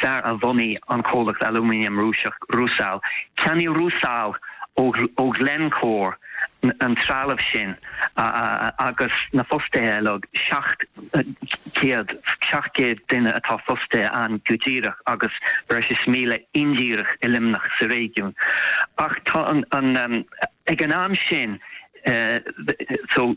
fear a bhunaigh an comhlacht alúmanaim Rúiseach Rusal. Cheannaigh Rusal ó Glencore an trealamh sin agus na fostaithe uilig, 700, 700 duine atá fostaithe ann go díreach agus breis is 1,000 indíreach i Luimneach sa réigiún. Ach tá an, ag an am sin, so,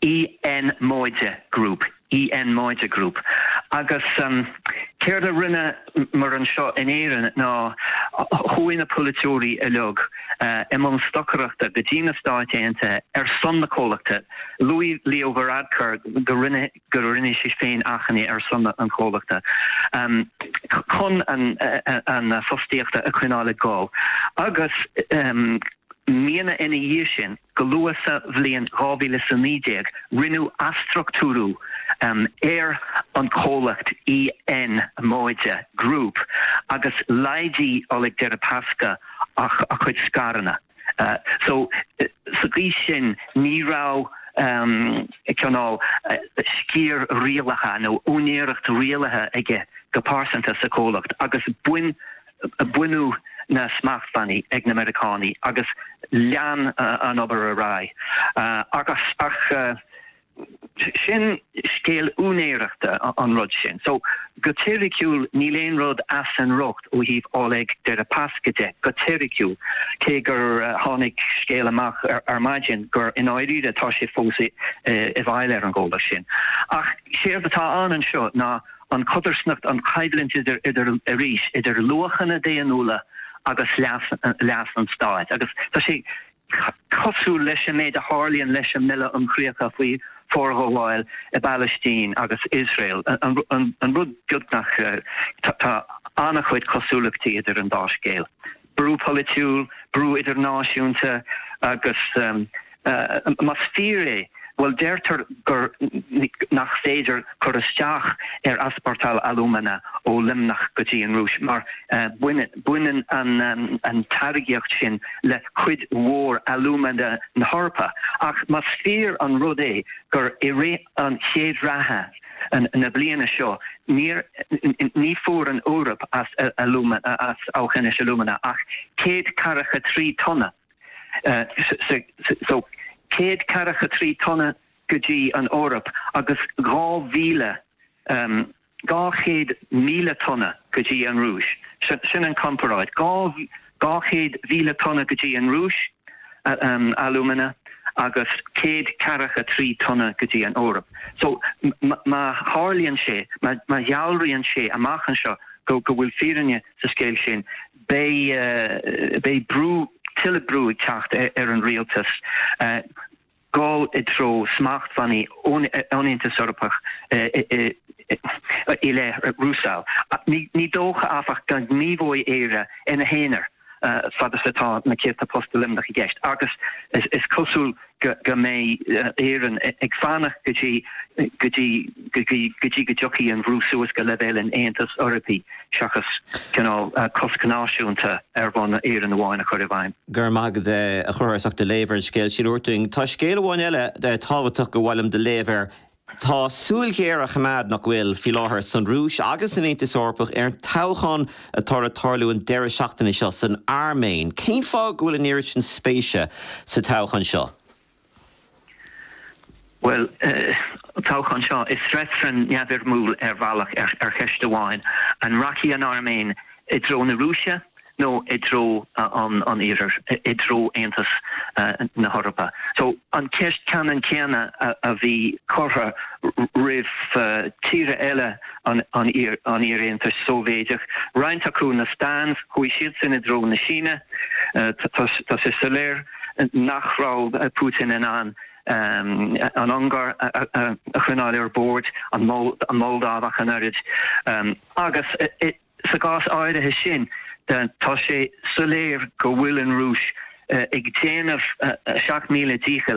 EN móide group. EN móide group. Agus céard a rinneamar anseo in Éirinn ná chuaigh na polaiteoirí uilig i mbun stocaireachta go dtí na Stáit Aontaithe ar son na comhlachta. Luaigh Leo Varadkar go rinne sé féin achainí ar son an chomhlachta chun an fostaíocht a choinneáil ag dul. Agus. míonna ina dhiaidh sin, go luath sa bhliain 2019, rinneadh athstruchtúrú ar an chomhlacht EN móide Group agus laghdaigh Oleg Deripaska a chuid scaireanna. So, sa gcaoi sin, ní raibh cineál sciar rialaithe nó úinéireacht rialaithe aige go pearsanta sa chomhlacht agus bhain Baineadh na smachtbhannaí ag na Meiriceánaigh agus lean an obair ar aghaidh. Ach sin scéal úinéireachta an rud sin. So, go teoiriciúil, níl aon rud as an riocht ó thaobh Oleg Deripaska de, go teoiriciúil, cé gur tháinig scéal amach ar maidin gur i ndáiríre tá sé fós i bhfeighil ar an gcomhlacht sin. Ach séard atá ann anseo ná. an codarsnacht, an choimhlint idir, idir, arís, idir luachanna daonnúla agus leas, leas an stáit. Agus tá sé cosúil leis an méid a tharlaíonn leis an mBille um Chríocha faoi Forghabháil i bPalaistín agus Iosrael, an rud beagnach, tá an-chuid cosúlachtaí idir an dá scéal. brú polaitiúil, brú idirnáisiúnta agus más fíor é, bhuel deirtear gur, nach féidir cur isteach ar easportáil alúmana ó Luimneach go dtí an Rúis mar baineann an táirgíocht sin le cuid mhór alúmana na hEorpa. Ach más fíor an rud é gur i rith an chéad ráithe na bliana seo, níor, ní fuair an Eoraip as as Aughinish Alumina ach 143 tonna, so 143 tonna go dtí an Eoraip agus 2,000 200,000 tonna go dtí an Rúis. Sin an comparáid, 200,000 tonna go dtí an Rúis alúmana agus céad ceathracha trí tonna go dtí an Eoraip. So má tharlaíonn sé, má dhealraíonn sé amach anseo go bhfuil fírinne sa scéal sin, beidh beidh brú, tuilleadh brú ag teacht ar an rialtas. gabháil i dtreo smachtbhannaí ón Aontas Eorpach i leith Rusal. Ní dócha, áfach, go ngníomhóidh Éire ina haonar fad is atá na céadta post i Luimneach i gceist agus is cosúil go mbeidh Éireann ag fanacht go dtí go dtí go dtiocfaidh an bhrú suas go leibhéal an Aontais Eorpaigh. seachas cineál cosc náisiúnta ar bhonn Éireann amháin a chur i bhfeidhm. Go raibh maith agat a Chathair as ucht do léamh ar an scéal sin. Abair linn, tá scéal amháin eile tábhachtach gur mhaith liom do léamh air. Tá súil ghéar á coimeád, nach bhfuil, faoi láthair san Rúis agus san Aontas Eorpach ar an toghchán atá le tarlú an deireadh seachtaine seo san Airméin. Cén fáth go bhfuil an oiread sin spéise sa toghchán seo? Bhuel, an toghchán seo, is reifreann neamhfhoirmiúil ar bhealach ar cheist amháin, an rachaidh an Airméin i dtreo na Rúise nó i dtreo an Iarthair, i dtreo Aontas na hEorpa. So, an cheist cheannann chéanna a bhí curtha roimh tíortha eile an iar-Aontais Shóivéadaigh, roinnt acu, na Stans, chuaigh siad sin i dtreo na Síne, tá sé soiléir. nach raibh Putin in ann an Ungáir a choinneáil ar bord, an Mholdóiv ach an oiread, agus sa gcás áirithe sin tá sé soiléir go bhfuil an Rúis ag déanamh a seacht míle dícheall